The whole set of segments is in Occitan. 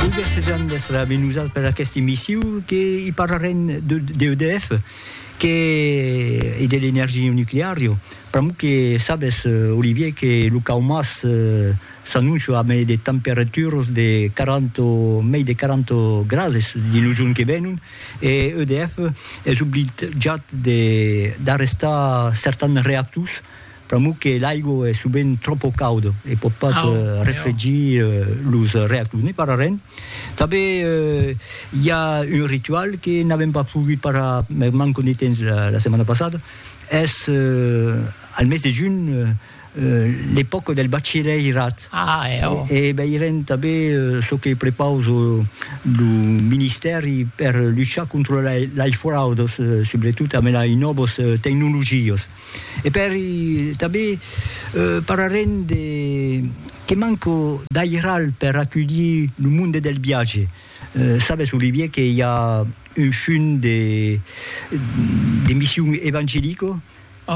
Olga Cézanne d'Estra avec nous per aquesta emissió que i parlarem de, de EDF que, e de l'energia nuclear. Jo. Pramo que sabes, eh, Olivier, que lo caumas eh, s'annuncia amb de temperaturas de 40, mei de 40 grades dins lo jorn que venon e EDF es obligat de, d'arrestar certans reactors Pr'amor que l'aigua es sovent tròpo cauda e pòt pas refregir los reactors. Ne parlarem. Tanben i a un ritual que n'avèm pas pogut parlar per manca de temps la setmana passada, es al mes de junh l'epòca del bachilhèirat e veirem tanben çò que prepausa lo ministèri per luchar contra lei fraudas, subretot amb lei nòvas tecnologias. E per i tanben pararem de que manco d'airal per aculhir lo monde del viatge. Sabes, Olivier, que i a un fum de de mission evangelico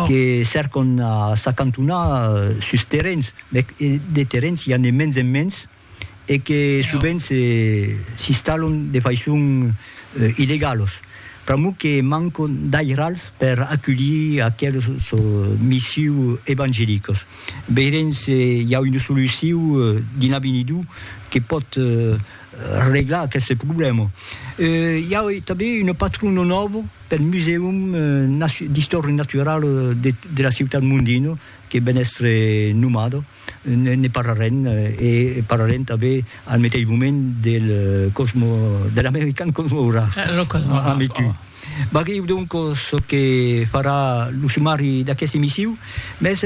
que cercon a s'acantonar sus terrens, mès de terrens i a ne mens en mens, e que sovent s'installon de faiçon illegalos. Pr'amor que mancon d'airals per aculhir aqueles missius evangelicos. Veirem se i a una solucion dins l'avenidor que pòt reglar aqueste problèma. I a tanben una patrona nòva pel Musèum d'Istòria Naturala de la ciutat Mondino que ven èstre nomada. ne parlarem e parlarem tanben al meteis moment del Cosmo, de l'American Cosmograph. Eh, lo Cosmograph. Ame tu. Oh. Vagèu donc çò que farà lo sumari d'aquesta emission, mès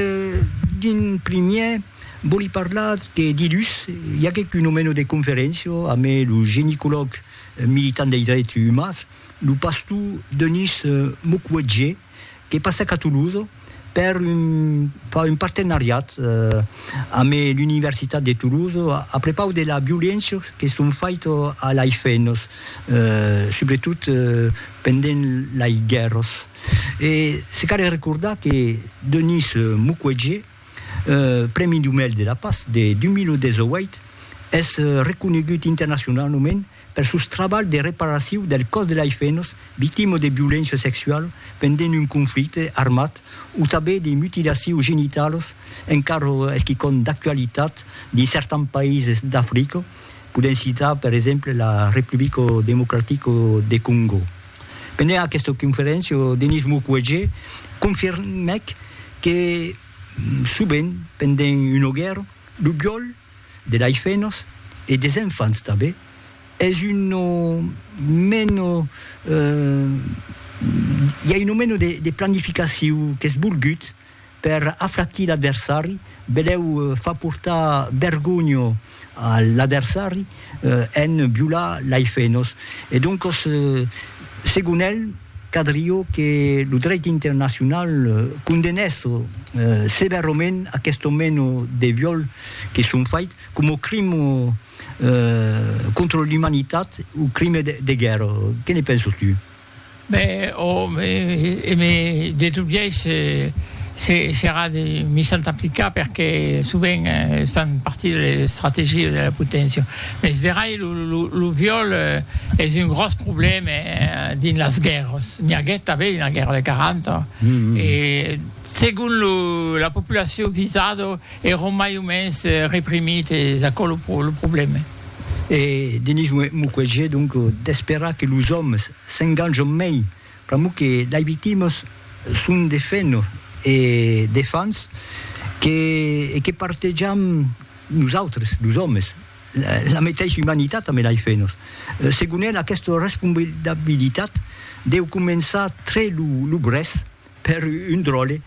d'un primièr vòli parlar que dilhus i aguèc un omeno de conferéncia ame lo genicològ militant dei drets umans, lo pastor Denis Mukwege, que passèc a Toulouse per far un partenariat amb l'Universitat de Toulouse a prepaus de las violéncias que son faitas a las femnas, subretot pendent las guèrras. E se cal recordar que Denis Mukwege, Prèmi Nobel de la Patz de 2018, es reconegut internacionaument Per sos trabalhs de reparacion del còs de lai fenas victima de violéncia sexuala pendent un conflicte armat o tanben de mutilacion genitalas encara es quicòm d'actualitat dins certans païses d'Africa, podèm citar per exemple la Republica Democratica de Còngo. Pendent aquesta conferéncia, Denis Mukwege confirmèc que sovent pendent una guèrra, lo viòl de laifenos e des enfants tanben es uno meno i a uno meno de planificacion qu'es volgut per afraquir l'adversari beleu far portar vergonha a l'adversari En violar lei fenos e doncos segon el cadrió que lo dreit internacional condenèsse sevèrament aquesto meno de viol que son fait coma crime contra l'umanitat o crime de guèrra. Que ne penses tu? Be, ò, e me de tot biais se serà de mi s'an aplicar perque sovent estan partir de estrategias de la poténcia. Mes verai lo lo viol es un gròs problème dins las guèrras. N'i aguèt tanben dins la guèrra de 40 e segon lo la populacion visada èron mai o mens reprimits es aquò lo problème. E Denis Mukwege donc d'esperar que los òmes s'enganjon mei pr'amor que lei victimas son de fenor e de fans que e que partejam nosautres los òmes la meteissa umanitat ambe lei fenors. Segon el aquesta responsabilitat deu començar tre lo brèç. Per un dròlle,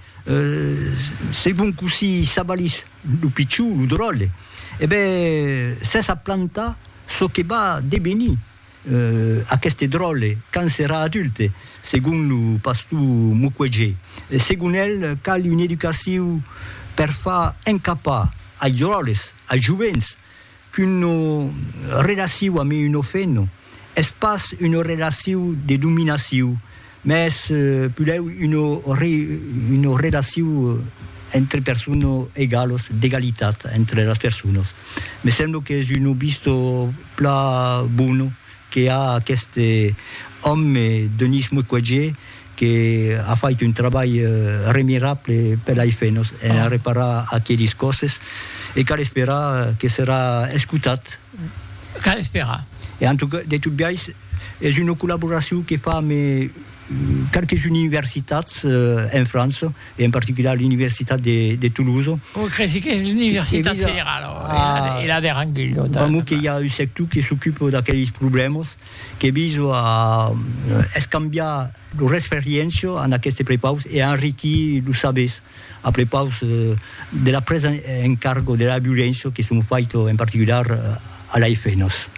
segon cossí s'avalís lo pichon, lo dròlle, e ben, s'es a plantar çò que va devenir aqueste dròlle quand serà adulte, segon lo pastor Mukwege. Segon el, cal una educacion per far encapar ai dròlles, ai jovents, qu'una relaciu ame un ofeno es pas una relaciu de dominaciu, mès pulèu una relaciu entre persona egalos, d'egalitat entre las personas. Me sembla qu'es una vista plan bona que a aqueste òme, Denis Mukwege, que a fait un trabalh remirable per la IFE nos en a reparar aquelis còsses e cal esperar que serà escotat. Cal esperar. E en tot, de tot biais, es una collaboracion que fa ame qualques universitats en França e en particular l'universitat de Toulouse. Oi, cresi qu'es l'universitat federala, e la de Rangui. Pr'amor que i a un sector que s'ocupa d'aquelis problèmas. que viso a escambiar lo resperiencio en aqueste prepaus e enriquir los sabers a prepaus de la presa en cargo de la violéncia que son faito en particular a l'AIFE nos.